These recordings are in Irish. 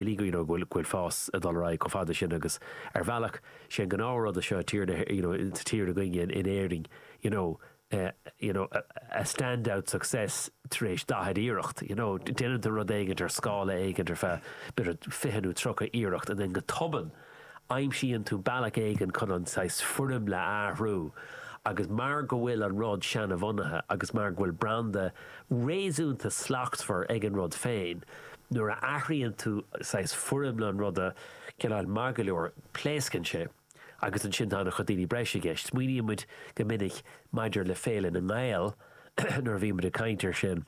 go bhfuil fás ag dul ar aghaidh chomh fada sin agus ar bhealach sé an gnáth rud seo tír na tíre seo againne in Éirinn you know you know a stand out success tar éis 40 iarracht you know déanann tú rud éigint ar scála éigint ar feadh b'fhéidir 20 nó 30 iarracht and then go tobann Aimsíonn tú bealach éigin chun an saghas foirmle a athrú agus mar go bhfuil an rud seana-bhunaithe agus mar go bhfuil branda réasúnta slachtmhar ag an rud féin, nuair a athraíonn tú saghas foirmle an ruda, cineál maith go leor, pléascann sé agus ansin tá ana chuid daoine breise i gceist. Smaoinímid go minic maidir le Féile na nGael nuair a bhímid ag caint ar sin.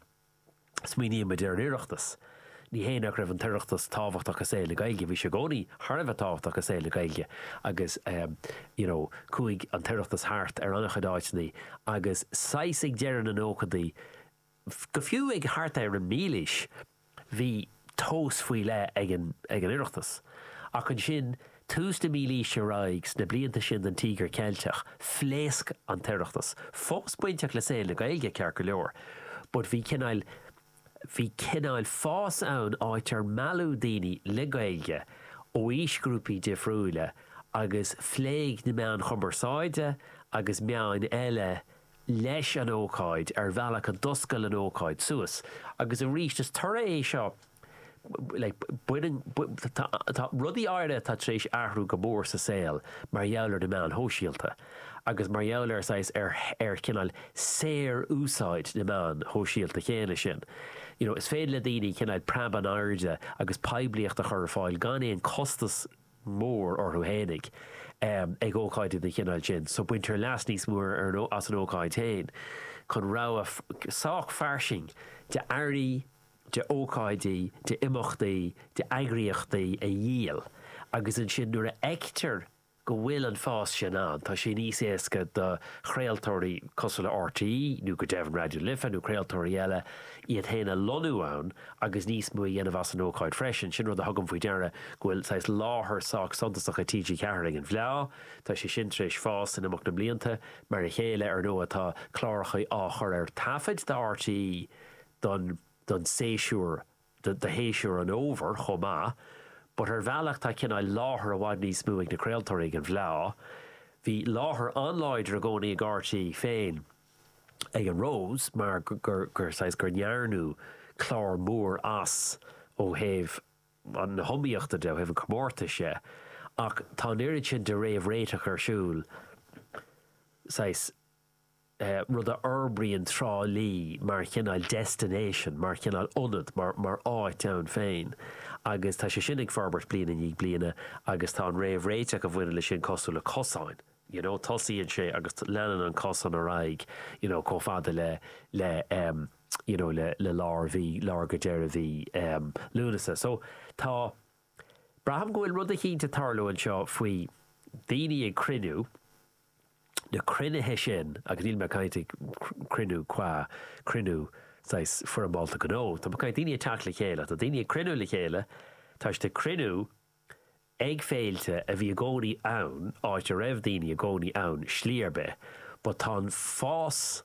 Smaoinímid ar an Oireachtas. Ní hé nach raibh an tOireachtas tábhachtach i saol na Gaeilge, bhí sé i gcónaí thar a bheith tábhachtach i saol na Gaeilge agus you know chuaigh an tOireachtas thart ar an-chuid áiteanna agus saghas ag deireadh na nóchaidí go fiú thart ar an mílaois bhí tábhacht faoi leith ag an oireachtas. Ach ansin, tús na mílaoise ar aghaidh, sna blianta sin den Tíogar Ceilteach, phléasc an t-oireachtas. Fós bainteach le saol na Gaeilge, ceart go leor, but bhí cineál, bhí cineál fás ann, áit ar mealladh daoine le Gaeilge ó aoisghrúpaí difriúila agus phléigh na meáin chumarsáide agus meáin eile leis an ócáid ar bhealach a d'oscail an ócáid suas agus arís is toradh é seo like tá rudaí áirithe atá tar éis athrú go mór sa saol mar gheall ar na meáin shóisialta agus mar gheall ar saghas ar chineál saor úsáid na meáin shóisialta céanna sin you know is féidir le daoine cineál preab in airde agus poiblíocht a chur ar fáil gan aon costas mór orthu fhéinig ag ócáidí den chineál sin so baintear leas níos mó as an ócáid féin chun rogha sách fairsing de earraí, de ócáidí, de imeachtaí, de eagraíochtaí a dhíol agus ansin nuair a fheictear go bhfuil an fás sin ann tá sé níos éasca do chraoltóirí cosúil le RTÉ nó go deimhin Raidió Life nó craoltóirí eile iad féin a lonnú ann agus níos mó a dhéanamh as an ócáid freisin. Sin rud a thugaim faoi deara, go bhfuil saghas láthair sách suntasach ag TG4 ag an bhFleá. Tá sé sin tar éis fás in imeacht na mblianta. Mar a chéile, ar ndóigh, tá cláracha á chur ar taifead do RTÉ don séasúr, do shéasúr an fhómhair chomh maith. But ar bhealach tá cineál láthair i bhfad níos mó ag na craoltóirí ag an bhFleá. Bhí láthair an-láidir i gcónaí ag RTÉ féin. ag an Rós mar saghas gur ndearnadh clár mór as ó thaobh na hiomaíochta de, ó thaobh an chomórtais de, ach tá an oiread sin de réamhréiteach ar siúl, saghas rud a fhorbraíonn Trá Lí mar chineál destination, mar chineál ionad, mar áit ann féin agus tá sé sin ag forbairt bliain i ndiaidh bliana agus tá an réamhréiteach a bhaineann leis sin cosúil le cosáin. you know, tosaíonn sé agus leanann an cosán ar aghaidh, you know, chomh fada le, le, um, you know, le, le lár mhí, lár go deireadh mhí, um, Lúnasa. So, tá, braithim go bhfuil rud eicínt ag tarlú anseo faoi daoine ag cruinniú, na cruinnithe sin, agus níl mé ag caint ar cruinniú cua, cruinniú saghas foirmeálta gnó, tá mé ag caint daoine ag teacht le chéile, tá daoine ag cruinniú le chéile, tá siad ag cruinniú, Ag féilte a bhí i gcónaí ann, áit a raibh daoine i gcónaí ann slí ar bith, but tá an fás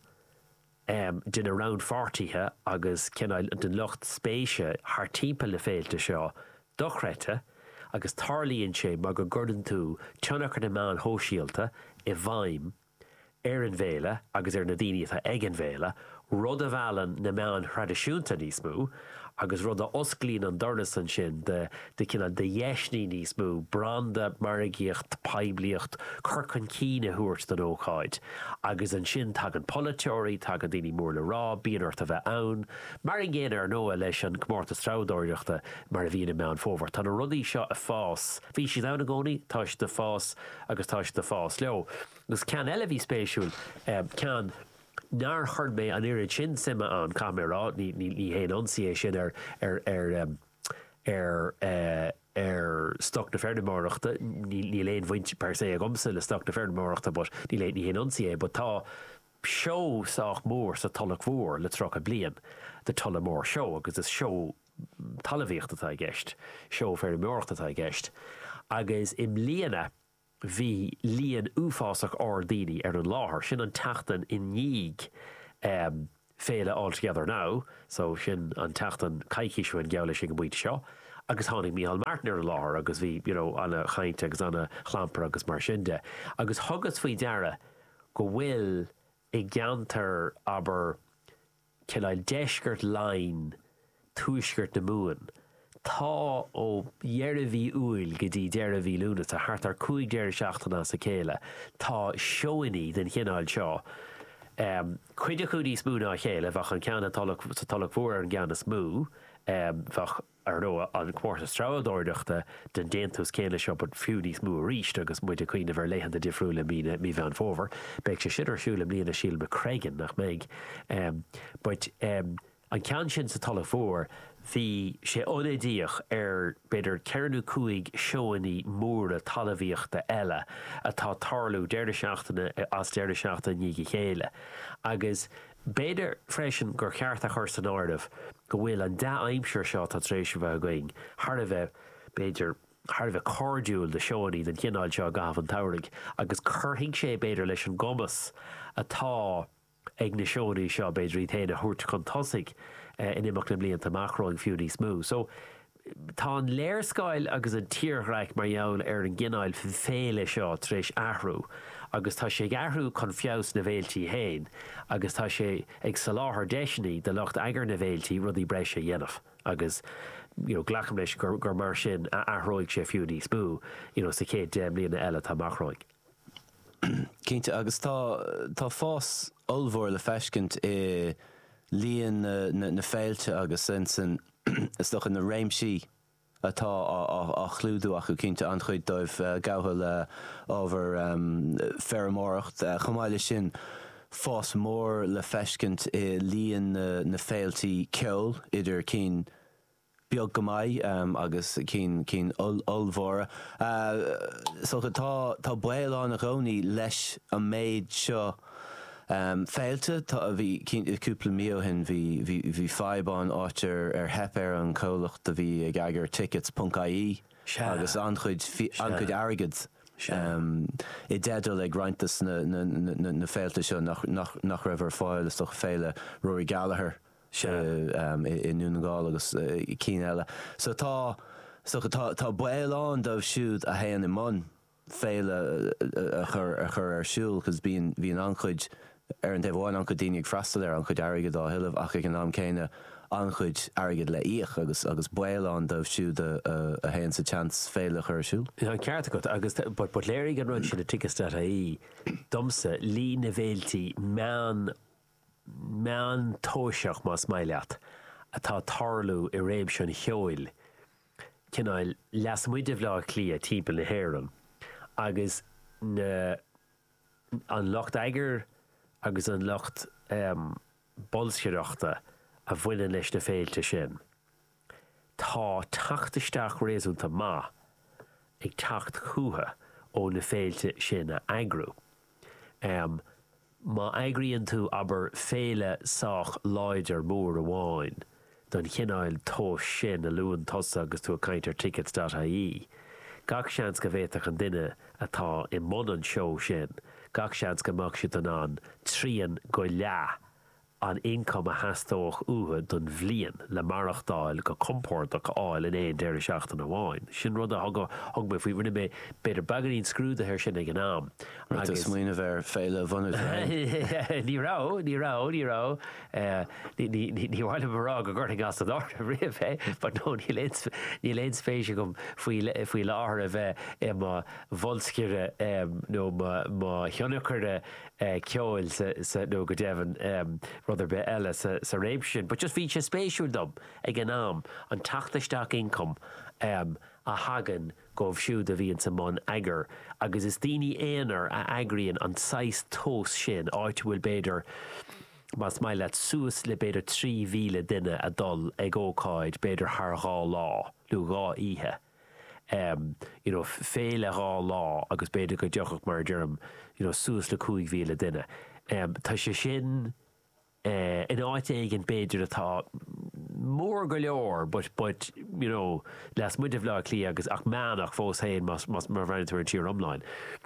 de na rannpháirtithe agus cineál den lucht spéise thart timpeall na féilte seo dochreidte agus tarlaíonn sé mar go gcuireann tú tionchar na meáin shóisialta i bhfeidhm ar an bhféile agus ar na daoine atá ag an bhféile, rud a mheallann na meáin thraidisiúnta níos mó agus rud a osclaíonn an doras ansin do, do cineál de dheiseanna níos mó branda, margaíocht, poiblíocht, cur chun cinn a thabhairt don ócáid. Agus ansin tagann polaiteoirí, tagann daoine mór le rá, bíonn ort a bheith ann. Mar an gcéanna, ar ndóigh, leis an gcomórtas treabhdóireachta mar a bhíonn i Meán Fómhair. Tá na rudaí seo ag fás, bhí siad ann i gcónaí, tá siad ag fás, agus tá siad ag fás leo. Agus ceann eile a bhí spéisiúil, ceann nár chuir mé an oiread sin suime ann, caithfidh mé a rá, ní haon ionsaí é sin ar, ar, ar stoc na feirmeoireachta, níl aon bhaint per se agamsa le stoc na feirmeoireachta but níl, ní haon ionsaí é, but tá, seó sách mór sa Tulach Mhór le 30 bliain, The Tullamore Show, agus is seó talamhaíochta atá i gceist, seó feirmeoireachta atá i gceist, agus i mbliana bhí líon uafásach ard daoine ar an láthair, sin an tseachtain i ndiaidh féile All Together Now, so sin an tseachtain coicís ó shin geall leis an bpointe seo, agus tháinig Micheál Martin ar an láthair agus bhí, you know, ana-chaint agus ana-chlampar agus mar sin de. Agus thugas faoi deara go bhfuil i gceantar, abair, cineál deisceart Laighin, tuaisceart na Mumhan, tá ó dheireadh mhí Iúil go dtí deireadh mhí Lúnasa, thart ar 5 deireadh seachtaine as a chéile, tá seónna den chineál seo, cuid acu níos mó ná a chéile, bheadh an ceann sa Tulach Mhór ar an gceann is mó, bheadh. Ar ndóigh, an comórtas treabhadóireachta den déantús céanna seo, but fiú níos mó arís, agus muid ag cuimhneamh ar laethanta difriúla mí na, mí Mheán Fómhair, beidh sé sin ar siúl i mbliana, sílim, i Screagán, nach mbeidh? em. but em. an ceann sin sa Tulach Mhór, bhí sé ionadaíoch ar b'fhéidir ceithre nó cúig seóannaí móra talamhaíochta eile atá tarlú deireadh seachtaine as deireadh seachtaine i ndiaidh a chéile agus, B'fhéidir freisin gur cheart a chur san áireamh go bhfuil an dea-aimsir seo atá tar éis a bheith againn thar a bheith, b'fhéidir, thar a bheith cairdiúil do sheónnaí den chineál seo i gcaitheamh an tsamhraidh agus cuirfidh sé, b'fhéidir, leis an gcumas atá ag na seóanna seo, b'fhéidir, iad féin a thabhairt chun tosaigh in imeacht na mblianta amach romhainn fiú níos mó. So. Tá an léarscáil agus an tírdhreach mar gheall ar an gcineál féile seo tar éis athrú agus tá sé ag athrú chun feabhas na bhféiltí féin agus tá sé ag soláthar deiseanna do lucht eagair na bhféiltí rudaí breise a dhéanamh agus you know glacaim leis gur mar sin a athróidh sé fiú níos mó you know sa chéad deich mbliana eile atá amach romhainn. Cinnte, agus tá, tá fás ollmhór le feiscint i líon na féilte agus insan, is dócha, na réimsí atá á chlúdú acu. Cinnte, an-chuid dóibh gafa le ábhar feirmeoireacht. Chomh maith leis sin, fás mór le feiscint i líon na féiltí ceoil, idir cinn. beag go maith agus cinn, cinn ollmhóra. So tá, tá baol ann i gcónaí leis an méid seo féilte. Cúpla mí ó shin bhí, bhí fadhb ann, áit ar, ar theip ar an chomhlacht a bhí ag eagar tickets ponc ie agus an-chuid, an-chuid airgead i dteideal ag roinnt des na, na féilte seo nach raibh ar fáil, so féile Rory Gallagher. seo i nDún na nGall agus cinn eile. So tá so tá baol ann dóibh siúd a théann i mbun féile a chur a chur ar siúl because bíonn bíonn an-chuid ar an taobh amháin an-chuid daoine ag freastal air an-chuid airgead á thuilleamh ach ag an am céanna an-chuid airgead le íoc agus agus baol ann dóibh siúd a a théann sa tseans féile a chur ar siúl. Tá an ceart agat agus but but léirigh an rud sin le tickets.ie domsa líon na bhféiltí meán meántoiseach, más maith leat, atá ag tarlú i réimse an cheoil, cineál lasmuigh de Bhleá Cliath, timpeall na hÉireann, agus na, an lucht eagair agus an lucht, em, bolscaireachta a bhaineann leis na féilte sin. Tá teacht isteach réasúnta maith ag teacht chucu ó na féilte sin a eagrú. Má eagraíonn tú, abair, féile sách láidir mór amháin den chineál tomhais sin a luann tusa agus tú ag caint ar tickets.ie, gach seans go bhféadfadh an duine atá i mbun an tseó sin, gach seans go mbeadh siad in ann trian go leath an ioncam a theastódh uathu don bhliain le maireachtáil go compordach a fháil in aon deireadh seachtaine amháin. Sin rud a thug mé faoi, rinne mé, b'fhéidir, beagáinín scrúdaithe air sin ag an am agus. Rith an smaoineamh air féile a bhunú féin. Ní raibh, ní raibh, ní raibh, ní mhaith liom a rá go gcuirfinn as an áireamh riamh é, but no, níl aon spéis agam faoi láthair a bheith i mo bholscaire nó mo thionscnóir. eh, ceoil sa, sa, nó go deimhin, em, rud ar bith eile sa, sa réimse sin. But just bhí sé spéisiúil dom, ag an am, an teacht isteach ioncaim, em, a thagann dhóibh siúd a bhíonns i mbun eagar. Agus is daoine aonair a eagraíonn an saghas tomhas sin, áit a bhfuil b'fhéidir, más maith leat, suas le b'fhéidir 3,000 duine a dhul ag ócáid b'fhéidir thar dhá lá, nó dhá oíche. you know féile dhá lá agus b'fhéidir go dtiocfadh mar a deirim you know suas le 5,000 duine. Tá sé sin in áit éigin b'fhéidir atá mór go leor but, but you know lasmuigh de Bhaile Átha Cliath agus ach meánach fós féin más, má bhreathnaíonn tú ar an tír iomlán.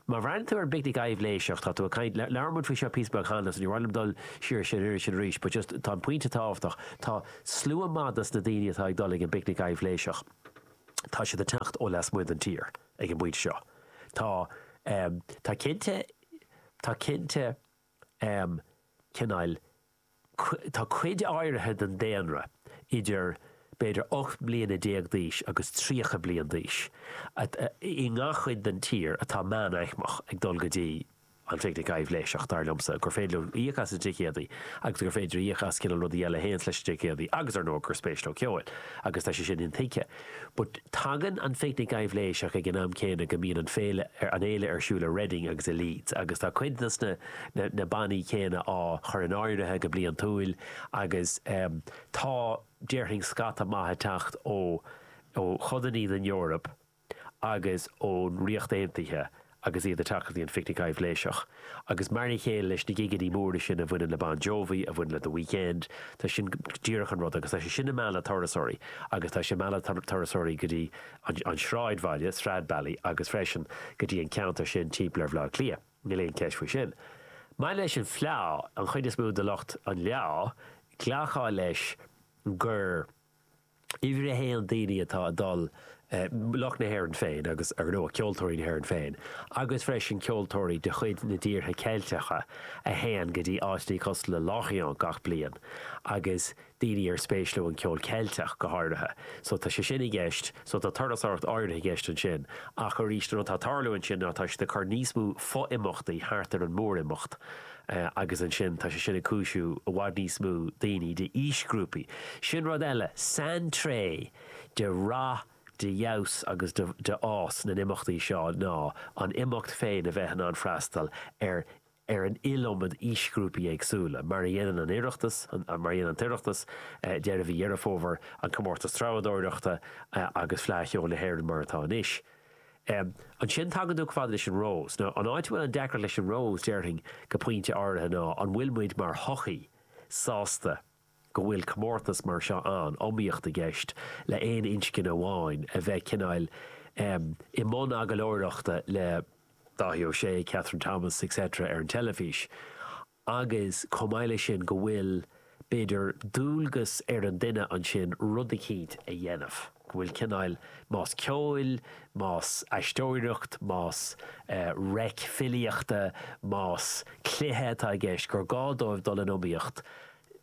Má bhreathnaíonn tú ar an bpicnic aibhléiseach, tá tú ag caint, labhair muid faoi seo píosa beag cheana agus ní mhaith liom dul siar sin air sin arís but just tá an pointe tábhachtach, tá slua maith dos na daoine atá ag dul ag an bpicnic aibhléiseach. tá siad ag teacht ó lasmuigh den tír ag an bpointe seo. Tá, em, tá cinnte, tá cinnte, em, cineál, tá cuid áirithe den daonra idir b'fhéidir ocht mbliana déag d'aois agus tríocha bliain d'aois i ngach chuid den tír atá meánaicmeach ag dul go dtí, An phicnic aibhléiseach, dar liomsa, gur féidir leo íoc as na ticéadaí agus gur féidir íoc as cineál rudaí eile a théanns leis na ticéadaí agus, ar ndóigh, gur spéis leo ceol agus tá sé sin intuigthe. But tagann an phicnic aibhléiseach ag an am céanna go mbíonn an féile, an fhéile ar siúl i Reading agus i Leeds agus tá cuid dos na, na bannaí céanna á chur in áirithe go bliantúil agus tá, déarfainn, scata maith ag teacht ó, ó chodannaí den Eoraip. agus ón Ríocht Aontaithe agus iad ag teacht go dtí an Phicnic Aibhléiseach. Agus mar a chéile leis na gigeanna móra sin a bhaineann le Bon Jovi, a bhaineann le The Weekend, tá sin díreach an rud agus tá sé sin ag mealladh turasóirí agus tá sé ag mealladh turasóirí go dtí an sráidbhaile, Stradbally, agus freisin go dtí an ceantar sin timpeall ar Bhaile Átha Cliath, níl aon cheist faoi sin. Maidir leis an bhfleá, an chuid is mó de lucht an fhleá, glacfá leis gur. Uimhir a haon, daoine atá ag dul, lucht na hÉireann féin agus, ar ndóigh, ceoltóirí na hÉireann féin, agus freisin ceoltóirí de chuid na tíortha Ceilteacha a théann go dtí áiteanna cosúil le Lorient gach bliain agus daoine ar spéis leo an ceol Ceilteach go háirithe. So tá sé sin i gceist, so tá turasóireacht áirithe i gceist ansin ach arís an rud atá ag tarlú ansin ná tá siad ag cur níos mó fo-imeachtaí thart ar an mór-imeacht, agus ansin tá sé sin ag cúisiú go bhfuil i bhfad níos mó daoine d'aoisghrúpaí. Sin rud eile, saintréith de rath, de fheabhas agus de fhás na n-imeachtaí seo ná an imeacht féin a bheith in ann freastal ar ar an iliomad aoisghrúpaí éagsúla, mar a dhéanann an tOireachtas, mar a dhéanann an tOireachtas, deireadh mhí Dheireadh Fómhair, an Comórtas Treabhdóireachta agus Fleadh Cheoil na hÉireann mar atá anois. Ansin tagann tú chomh fada leis an Rose. Nó an áit a bhfuil an deacracht leis an Rose, déarfainn go pointe áirithe, ná an bhfuil muid mar shochaí sásta go bhfuil comórtas mar seo ann, iomaíocht i gceist le aon inscne amháin a bheith cineáil i mbun agallóireachta le Dáithí Ó Sé, Kathryn Thomas, etc. ar an teilifís. agus chomh maith leis sin go bhfuil, b'fhéidir, dualgas ar an duine ansin rud eicínt a dhéanamh, go bhfuil cineál, más ceoil, más aisteoireacht, más reic filíochta, más cluiche atá i gceist, gur gá dóibh dul in iomaíocht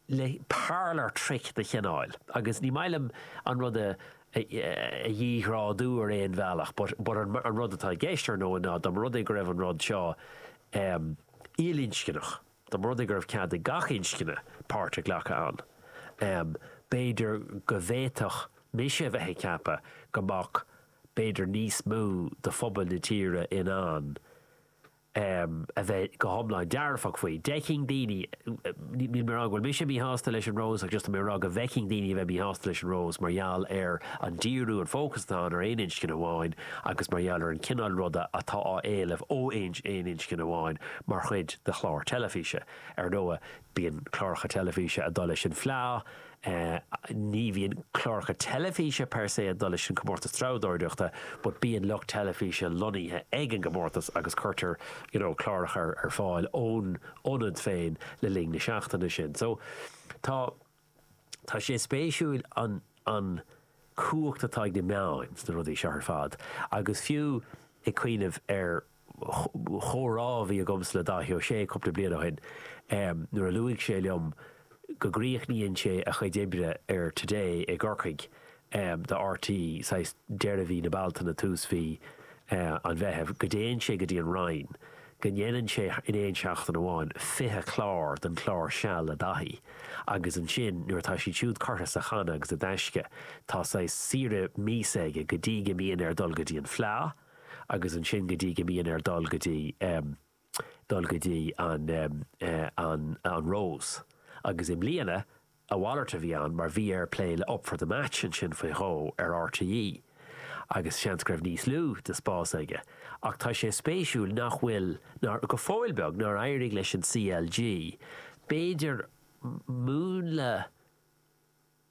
le parlour trick de chineál, agus ní maith liom an rud a dhíghrádú ar aon bhealach but an rud atá i gceist, ar ndóigh, ná dá mba rud é go raibh an rud seo, ilinscneach. Dá mba rud é go raibh cead ag gach inscne páirt a ghlacadh ann, b'fhéidir go bhféadfadh mise a bheith ag ceapadh go mbeadh b'fhéidir níos mó de phobal na tíre in ann a bheith go hiomlán dearfach faoi. D'fheicfinn daoine. Níl mé ag rá go bhfuil mise míshásta leis an Rose ach just tá mé ag rá go bhfeicfinn daoine a bheith míshásta leis an Rose mar gheall ar an díriú, an fócas atá ann ar aon inscne amháin agus mar gheall ar an gcineál ruda atá á éileamh ó aon inscne amháin mar chuid de chlár teilifíse. Ar ndóigh, bíonn cláracha teilifíse ag dul leis an bhfleá, Ní bhíonn cláracha teilifíse per se ag dul leis an gcomórtas treabhdóireachta but bíonn lucht teilifíse lonnaithe ag an gcomórtas agus cuirtear you know cláracha ar fáil ón ionad féin le linn na seachtaine sin. So tá tá sé spéisiúil an an cumhacht atá ag na meáin sna rudaí seo ar fad agus fiú ag cuimhneamh ar chomhrá a bhí agamsa le Dáithí Ó Sé cúpla bliain ó shin nuair a luaigh sé liom go gcríochnaíonn sé a chuid oibre ar Today i gCorcaigh do RTÉ saghas deireadh mhí na Bealtaine, tús mhí an Mheithimh, go dtéann sé go dtí an Rinn, go ndéanann sé in aon seachtain amháin 20 clár den chlár Seal le Dáithí agus ansin nuair atá siad siúd curtha sa channa agus i dtaisce, tá saghas saoire míosa aige go dtí go mbíonn air dul go dtí an Fleadh. agus ansin go dtí go mbíonn air dul go dtí, em, dul go dtí an, em, eh, an, an Rose. Agus i mbliana, a mhalairt a bhí ann mar bhí air plé le Up for the Match ansin faoi dhó ar RTÉ agus seans go raibh níos lú de spás aige. Ach tá sé spéisiúil nach bhfuil, nár, go fóill beag, nár éirigh leis an CLG, b'fhéidir, múnla,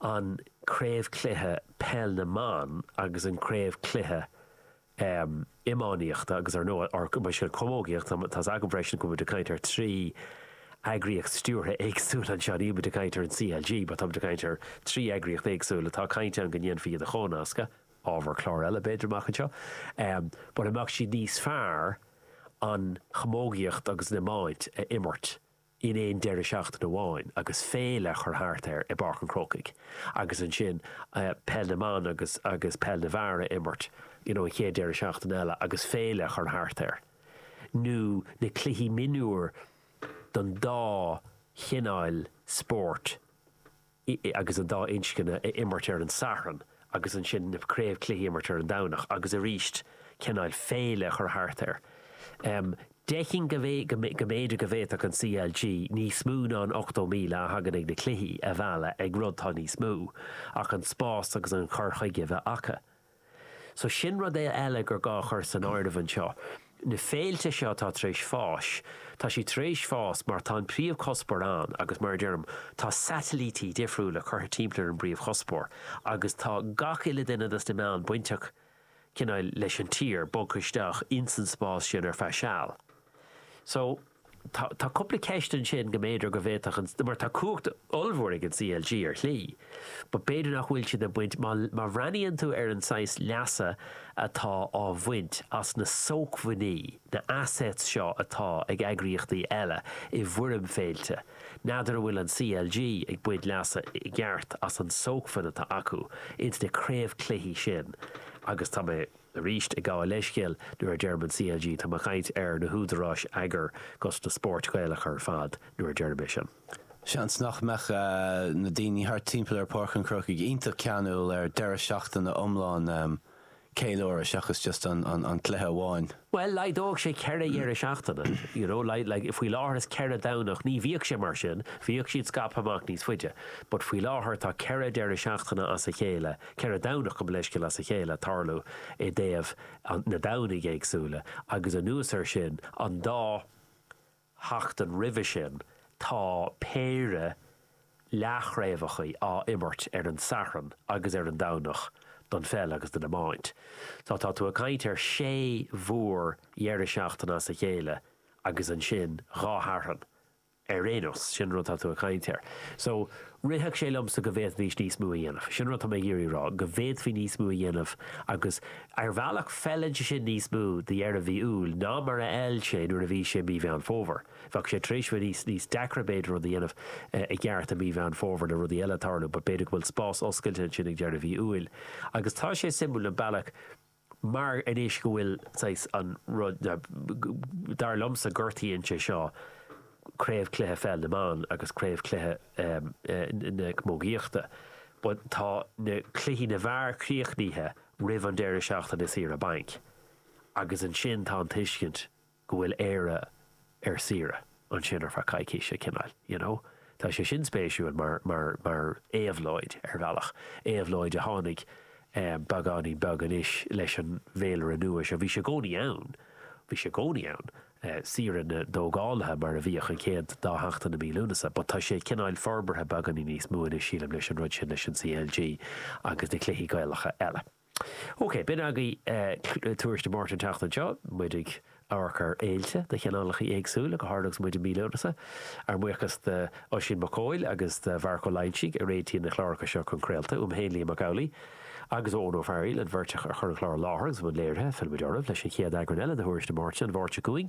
an craobhcluiche Peil na mBan agus an craobhcluiche iománaíochta agus ar ndóigh ansin an chamógaíocht. Tá's agam freisin go bhfuil muid ag caint ar trí eagraíocht stiúrtha éagsúil anseo. Níl muid ag caint ar an CLG but tá muid ag caint ar trí eagraíocht éagsúil atá caint ann go ndéanfaí iad a chomhnascadh, ábhar cláir eile b'fhéidir amach anseo, mura mbeadh sé níos fearr an chamógaíocht agus an iomáint a imirt in aon deireadh seachtaine amháin agus féile a chur thart air i bPáirc an Chrócaigh agus ansin Peil na mBan agus agus Peil na bhFear a imirt you know an chéad deireadh seachtaine eile agus féile a chur thart air nó na cluichí mionúir don dá chineáil spóirt i, agus an dá inscne a imirt ar an Satharn, agus ansin na craobh cluichí a imirt ar an Domhnach, agus arís cineáil féile a chur thart air. D'fheicfinn go mb'fhéidir go bhféadfadh an CLG níos mó ná an 80,000 a thagann ag na cluichí a mhealladh ag rud atá níos mó ach an spás agus an cur chuige a bheith acu. So sin rud e eile gur gá a chur san áireamh anseo. Na féilte seo atá tar éis fás, tá siad tar éis fás mar tá an príomhchuspóir ann agus mar a deirim, tá satailítí difriúla curtha timpeall ar an bpríomhchuspóir agus tá gach uile duine dos na meáin bainteach cineál leis an tír, bogtha isteach ins an spás sin ar feadh seal. So. Tá cúpla ceist ansin go mb'fhéidir go bhféadfadh an, mar tá cumhacht ollmhór ag an CLG ar shlí, but b'fhéidir nach bhfuil siad ag baint, má má bhreathnaíonn tú ar an saghas leasa atá á bhaint as na sócmhainní, na assets seo atá ag eagraíochtaí eile i bhfoirm féilte, n'fheadar an bhfuil an CLG ag baint leasa i gceart as an sócmhainn atá acu ins na craobhchluichí sin agus tá mé. Arís, ag gabháil leithscéil nuair a deirim an CLG, táim ag caint ar na húdaráis eagair 'gus na spóirt Ghaelacha ar fad nuair a deirim é sin. Seans nach mbeadh na daoine thart timpeall ar Pháirc an Chrócaigh iontach ceanúil ar deireadh seachtaine iomlán ceiliúradh seachas just an cluiche amháin. Bhuel, laghdódh sé ceithre dheireadh seachtaine, you know, like, faoi láthair is ceithre Dhomhnach, ní bhíodh sé mar sin, bhíodh siad scaipthe amach níos faide, but faoi láthair tá ceithre deireadh seachtaine as a chéile Ceithre Dhomhnach gabh mo leithscéal as a chéile ag tarlú i dtaobh na Domhnaigh éagsúla agus anuas air sin, an dá sheachtain roimhe sin tá péire leathchraobhacha á imirt ar an Satharn agus ar an Domhnach don pheil agus don iomáint. So tá tú ag caint ar shé mhór-dheireadh seachtaine as a chéile agus ansin dhá Shatharn. ar aon nós, sin an rud atá tú ag caint air. So, rithfeadh sé liomsa go bhféadfaidís níos mó a dhéanamh. Sin an rud atá mé ag iarraidh a rá, go bhféadfaí níos mó a dhéanamh agus, ar bhealach, feileann sé sin níos mó do dheireadh mhí Iúil ná mar a fheil sé nuair a bhí sé i mí Mheán Fómhair. Bheadh sé tar éis a bheith níos, níos deacra, b'fhéidir, rud a dhéanamh i gceart i mí Mheán Fómhair le rudaí eile ag tarlú but b'fhéidir go bhfuil spás oscailte ansin ag deireadh mhí Iúil. Agus tá sé suimiúil an bealach, Mar anois go bhfuil, saghas, an rud, dar liomsa, gortaíonn sé seo Craobhchluiche Pheil na mBan agus Craobhchluiche na Camógaíochta. But tá na cluichí na bhfear críochnaithe roimh an deireadh seachtaine saoire bainc agus ansin tá an tuiscint go bhfuil Éire ar saoire ansin ar feadh coicíse, cineál, you know. Tá sé sin spéisiúil mar, mar, mar éabhlóid, ar bhealach. Éabhlóid a tháinig beagáinín beag anois leis an bhféilire nua seo. Bhí sé i gcónaí ann, bhí sé i gcónaí ann, saoire na dtógálaithe mar a bhíodh an chéad dá sheachtain i mí Lúnasa, but tá sé cineál forbartha beagáinín níos mó anois, sílim, leis an rud sin, leis an CLG agus na cluichí Gaelacha eile. OK, b'in agaibh Tuairisc Dé Máirt an tseachtain seo. Muid ag amharc ar fhéilte de chineálacha éagsúla, go háirithe agus muid i mí Lúnasa. Ár mbuíochas d'Oisín Mac Cóil agus do Mharc Ó Loingsigh a réitíonn na cláracha seo chun craolta, uaim féin Liam Mac Amhlaigh agus ó Eoin Ó Fearaíl, an bheirt a chuir an clár i láthair agus i mbun léirithe. Fillfimid oraibh leis an chéad eagrán eile de Thuairisc Dé Máirt an Mháirt seo chugainn.